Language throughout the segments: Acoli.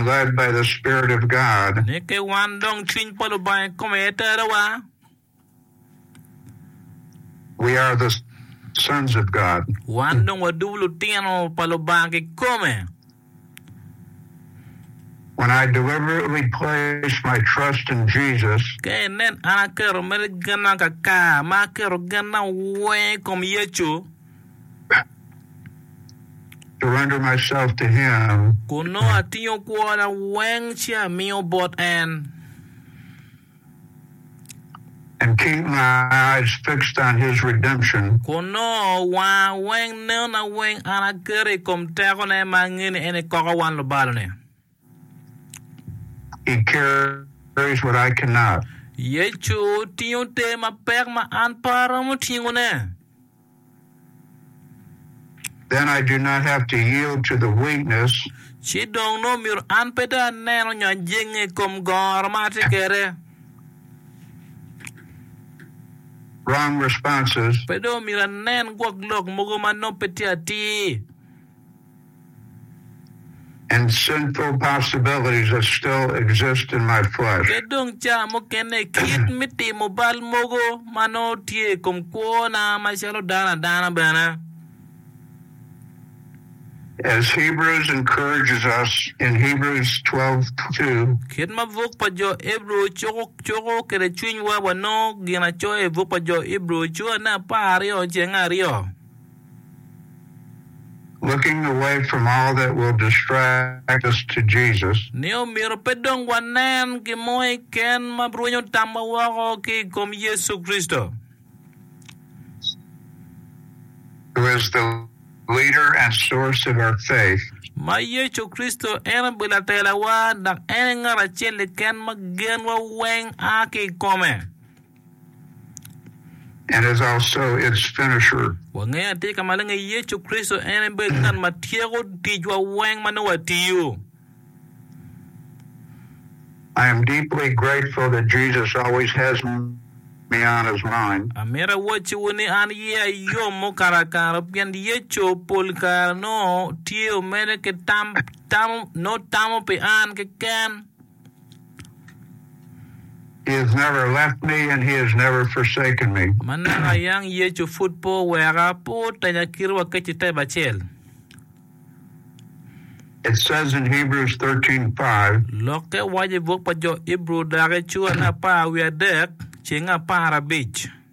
led by the Spirit of God. Neke wan dong cwiny pa Lubanga i kome aye terowa. We are the sons of God. Wan dong wadubu lutino pa Lubanga kikome. When I deliberately place my trust in Jesus, Ka inen an aketo mere genna kakar, ma aketo genna weng i kom Yecu. Kun nongo atingo kwona weng ci amiyo bot en. Kun nongo wanga weng nenona weng an aketo i kom tekone, ma angeni en ekoko wan lubalone. He carries what I cannot. Yecu tingo ter mapek ma an pe aromo tingone. Then I do not have to yield to the weakness Ci dong nongo myero an pe dong aneno nyo ajenge i kom goro ma atye kwede. wrong responses. Pe dong myero anen gwok lok mogo ma nongo pe tye atir. and sinful possibilities that still exist in my flesh. Kit dong ca mukene, kit me timo bal mogo ma nongo tye i kom kwona macalo dano adana bene. As Hebrews encourages us in Hebrews 12:2, Kit ma buk pa jo Ebru cuko cuko kwede cwinywa, wanongo ginacoya i buk pa jo Ebru, Cura ne apar aryo cenge aryo. Looking away from all that will distract us to Jesus. Ni omyero pe dong wanen gin mo keken ma rwenyo tamwa woko ki i kom Yecu Kricito. Who is the leader and source of our faith. Ma Yecu Kricito en obedo latelawa dok en aye ngat acel keken ma genwa weng a ki i kome. and is also its finisher. Wangeyo atika maleng ni Yecu Kricito en aye bedo ngat ma tyeko ticwa weng ma nongo watiyo. I am deeply grateful that Jesus always has me on his mind. Amito awacciwu ni an yeya yom mukato akaro pien Yecu pol kare nongo tye omede ki tam, nongo tamo pi an keken. Manaka ayang Yecu pud pe oweka, pe otenya kite wa kec i tep acel. Lokke waco i buk pa Jo Ibru daki, Cura me apar wiye adek, ceng apar abic.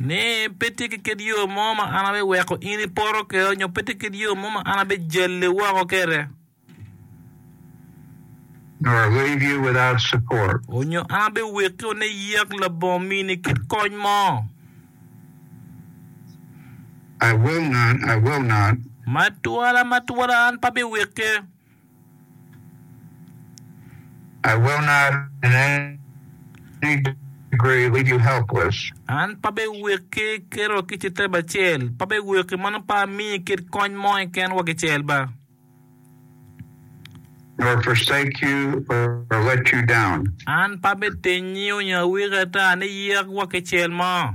Ni, Pe tye ki kit yo mo ma an abiweko in ipoto kwede nyo pe tye kit yo mo ma an abijali woko kwede, onyo an abiweki wun iyak labongo mini kit kony mo. Ma twala, ma twala, an pe abiweki. I will not in any degree leave you helpless. An pe abiweki kiro ki citep acel, pe abiweki mono pe amiyi kit kony mo keken wa kicel ba. nor forsake you or let you down. An pe abitinyi onyo awiki ata ni yek wa kicel mo.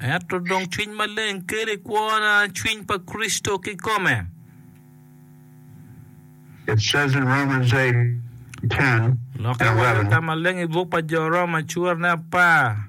Ento dong Cwiny Maleng kelo i kwona Cwiny pa Kricito kikome. Lok i wang Lata Maleng i buk pa Jo Roma curene apar.